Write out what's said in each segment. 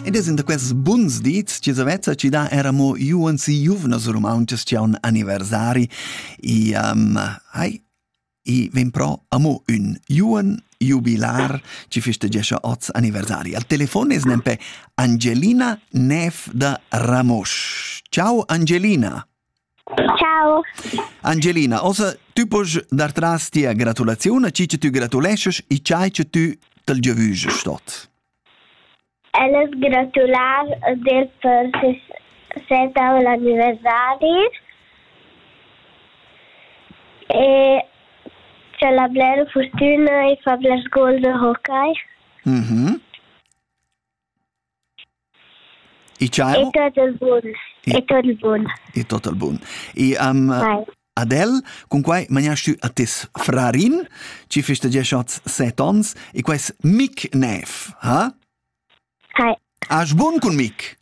Ed es in da quests buns dits chi s'avezza chi dà era mo juons e juvnas rumauntschas chi haun anniversari. I um, hai, i vegn però amo ün juon jubilar chi festagescha oz anniversari. Al telefon es nempe Angelina Neff da Ramosch. Ciao Angelina! Ciao. Angelina, ossa tü posch dar tras tia gratulaziun a chi che tü gratuleschas e chai che tü t'al giavüschas tot. El es gratular del per sesentavo anniversari e c'è la bler fortuna e fa bler gol de hockey. Mhm. Mm I ciao. E tot il bun. E tot il bun. E tot il bun. E um, ad el, con quai maniast tü a tes frarin, ci feste gia schat set ons, e quais mic nev, ha? Hai. As bun cun mic?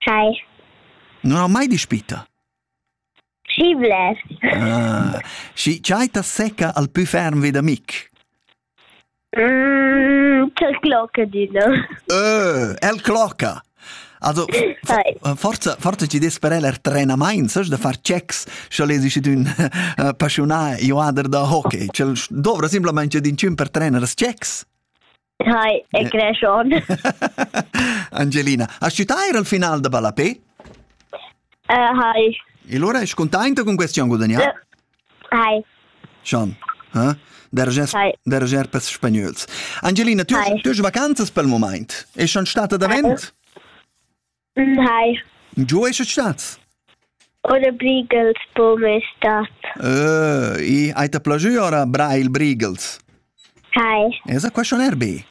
Hai. Non ha mai dispita? Schi blers. Ah, schi tgei ta secca al pü ferm vi da Mic? Mm, quel clocca dina. Ö, el clocca. Also, forza, forza ci des per el er trenamain, sas da far checks, sche lesi schi d'ün eh, passionà joader da hockey. Cel dovra simplamente d'incin per trener checks. Hi, è creschon. Angelina, has tu ir al final da Ballapé? Uh, hi. E allora è contenta con questa guadagnata? Hi. Schon. Eh? Dergers, derger per spagnöls. Angelina, tu, tu vacanzas per il moment? È schon stata davent? Hai. Giu ei stat? Ora Brigels po me stat. Uh, e hai te plagiu ora Brail Brigels? Hai. Esa question erbi?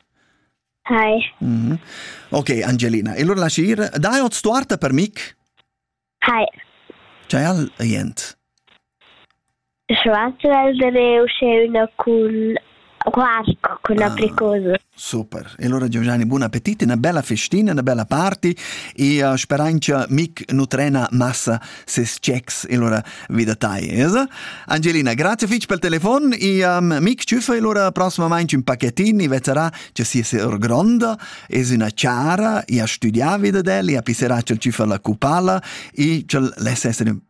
Hai. Mm -hmm. Ok, Angelina, e lur lascier, dai ot stuarta per mic? Hai. C'è al jent? Schwarzer el da der uschè üna cun quark, cun apricosa. Super. E allora Giovanni, buon appetit, una bella festina, una bella party e uh, sperain che mic nutrena massa ses checks e allora vida tai, esa? Angelina, grazie fitch pel telefon e um, mic tschüffa e allora prossimamente un pacchettin e vezzerà che si è gronda, es una chara e ha studià vida del e pisserà che tschüffa la cupala e che l'essere